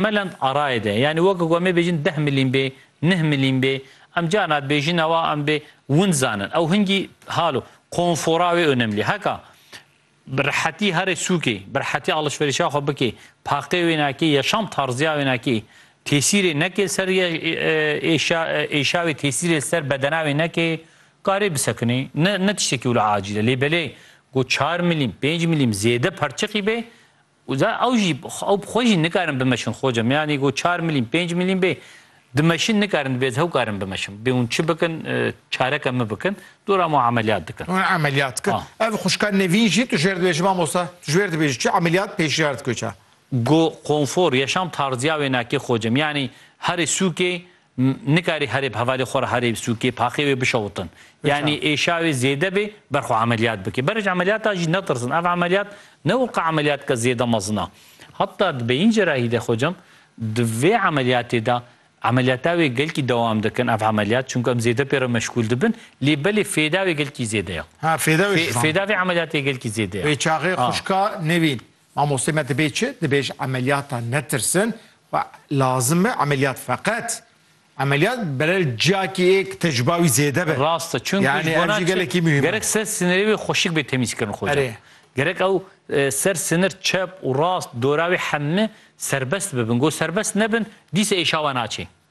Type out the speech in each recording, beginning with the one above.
Melend arayê de, yanî weke ku em ê bêjin deh milîm bê, neh milîm bê, em carna bêjin ewa em bê win zanin. Ew hingî hal o. Konfora wê onemlî. Heka bi rehetî herê sûkê, bi rehetî alişverîşa xwe bikê, paqê wênakê, yaşam tarzîya wênakê tesîrê nekê li ser êşa wê, tesîrê li ser bedena wê nekê, karê bisekinî. Ne ne tiştekî wila acîl e. Lê belê ku çar milîm, pênc milîm zêde perçiqî bê, Û za ew jî ew bi xwe jî nikarin bimeşin xoce me yanî ku çar milîn pênc milîn bê dimeşin nikarin divê ez hew karin bimeşin bê hûn çi bikin çareke min bikin dora me emeliyat dikin. Hûn emeliyat dikin. Ev xwişka Nevîn jî tu ji wêr dibêjî mamosta? Tu ji wêr dibêjî çi emeliyat pêşniyar dike çi? Go konfor, yaşam tarzya wê nakê xoce me yanî herê sûkê Nikarî herê bi hevalê xwe re herê sûkê, paqê wê bişewitin. Yanî êşa wê zêde bê, ber xwe emeliyat bike. Berij emeliyata jî netirsin. Ev emeliyat ne weke emeliyateke zêde mezin a. Heta di beyîn cerahî de xwecem, di vê emeliyatê de emeliyata wê gelkî dewam dikin ev emeliyat. Çimku em zêde pê re meşgûl dibin. Lê belê fêda wê gelkî zêde ye. Ha fêda wê ji van. Fêda vê emeliyatê gelkî zêde ye. Wê çaxê xwişka nivîn. Mamostê me dibê çi? Dibê ji emeliyatan netirsin xwe lazim e emeliyat feqet emeliyat berel ciyakî ê ki te ji bawî zêde be. Rast e çunku ji bo na çi gerek ser sinirê wê xweşik bê temîzkirin xoca. Gerek ew ser sinir çep û rast dora wê hemmi serbest bibin. Go serbest nebin dîsa êşawa naçê.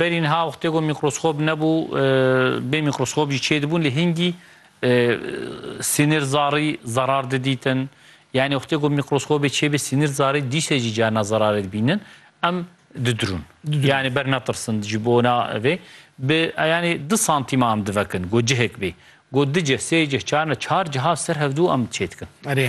Berî niha wextê ku mîkroskop nebû, bê mîkroskop jî çêdibûn lê hingî sînir zarî zerar didîtin. Yanî wextê ku mîkroskopê çêbê sînir zarî dîsê jî carina zerarê dibînin. Em didirûn. Yanî ber netirsin ji bona vê bi yanî du santîman em divekin ku cihek bê. Ku du cih, sê cih, çar ne çar ciha ser hevdû em çêdikin. Erê.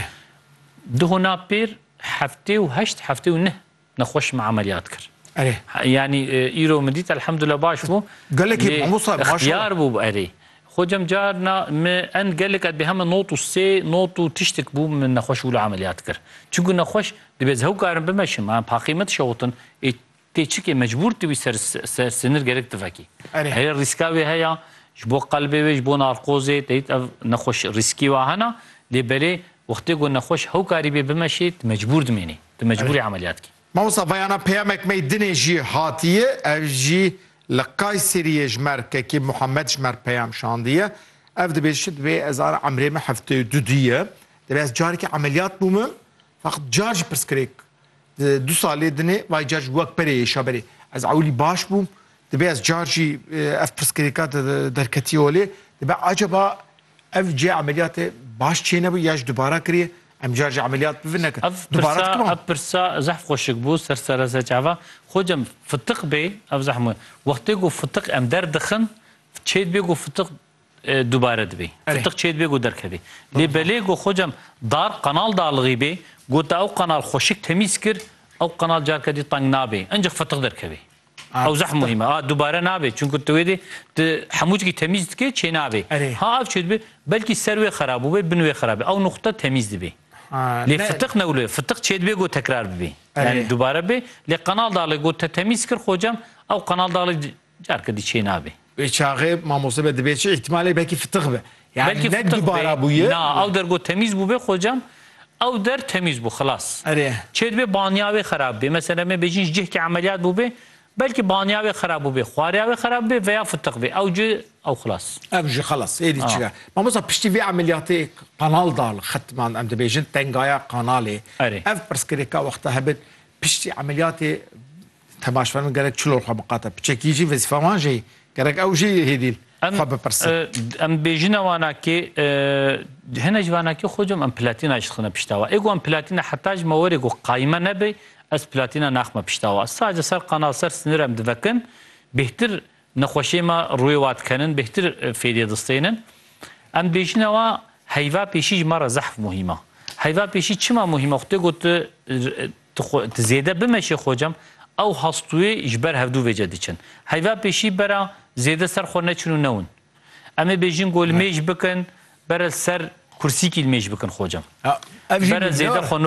Di hona pêr heftê û heşt, heftê û neh Nexweş min emeliyat kir. Erê. Yanî îro min dît elhamdulillah baş bû. Gelekî mamosta maşallah. Xiyar bû erê. Xwe cem car na min en gelek et bê heme not û sê not û tiştik bû min nexweş wilo emeliyat kir. Çunku nexweş dibê ez hew karin bimeşim. Em paqî me dişewtin. Ê tê çikê mecbûr tu wî ser ser sinir gerek tu vekî. Erê. Erê rîska wê heye ji bo qelbê wê ji bo narkozê te dît ev nexweş rîskî wa hene lê belê wextê ku nexweş hew karî bê bimeşê tu mecbûr dimînî. Tu mecbûrî emeliyat kî. Mamosta veyana peyamek mey dinê jî hatiye ev jî li Kayseriyê ji mer Kekî Muhammed ji mer peyam şandiye. Ev dibêje çi dibê ez ara emrê min hefteyê û du dî ye. Dibê ez carekî emeliyat bûmim feqet car jî pirsgirêk di du salê dinê vay car jî wek berê êşa berê ez ewilî baş bûm Dibe ez car jî ev pirsgirêka derketî holê, dibe acaba ev cê emeliyatê baş çê nebû ya ji dubara kiriye? Em car jî emeliyat bivin nekin. Ev pirsa ev pirsa zehf xweşik bû ser serezec ava. Xocem fitiq bê ev zehf mû. Wextê ku fitiq em der dixin çê dibê ku fitiq dubare dibê. Fitiq çê dibê ku derkevê. Lê belê ku xocem dar qanal dalixî bê ku te ew qanal xweşik temîz kir ew qanal carke dî teng nabê. Encîx fitiq derkevê. Ew zeh muhîm e. A dubare nabê. Çunku tu wê dê tu hemû tiştî temîz dikê çênabê. Ha ev çê dibê belkî ser wê xerab bûbê, bin wê xerab bê. Ew nuqte temîz dibê. Lê fitiq ne wilo. Fitiq çê dibê ku tekrar bibê. Yanî dubare bê. Lê qenal daxilê ku te temîz kir xocam ew qenal daxilê careke dî çênabê. Wê çaxê mamoste be dibê çi îhtimalê belkî fitix be. Yani belkî ne dubara bûye. Na ew der got temîz bûbê xocam ew der temîz bû xilas. Erê. Çê dibê baniya wê xerab bê. Mesela em ê bêjin ji cihkê emeliyat bûbê belkî baniya wê xerab bûbê, xwareya wê xerab bê veya fitix bê ew cî ew xilas. Ev jî xilas êdî çi be. Mamosta piştî vê emeliyatê qanal da li xetman em dibêjin tengaya qanalê. Erê. Ev pirsgirêka wexta hebin piştî emeliyatê Temaşvanên gerek çilor xwe biqate. Piçekî jî vezîfa wan jî gerek ew jî hêdîl xwe bipirsin. Em bêjine wana kê hene ji wana kê xocam em platîna jixine pişta we. Êgo em platîna heta ji me were ku qayme nebe ez platîna naxme pişta we. Sadece ser qanal ser sinir em divekin bêhtir nexweşê me rûyê wa dikenin bêhtir fêdê distênin. Em bêjine wa heyva pêşî ji me re zehf muhîm e. Heyva pêşî çima muhîm e xwe tê got Tu xwe tu zêde bimeşê xocam, ew hastûyê ji ber hevdû vêce diçin. Heyva pêşî bera zêde ser xwe neçin û newin. Em ê bêjin ku li mêj bikin, bere li ser kursîkî li mêj bikin xocam. Bere zêde xwe.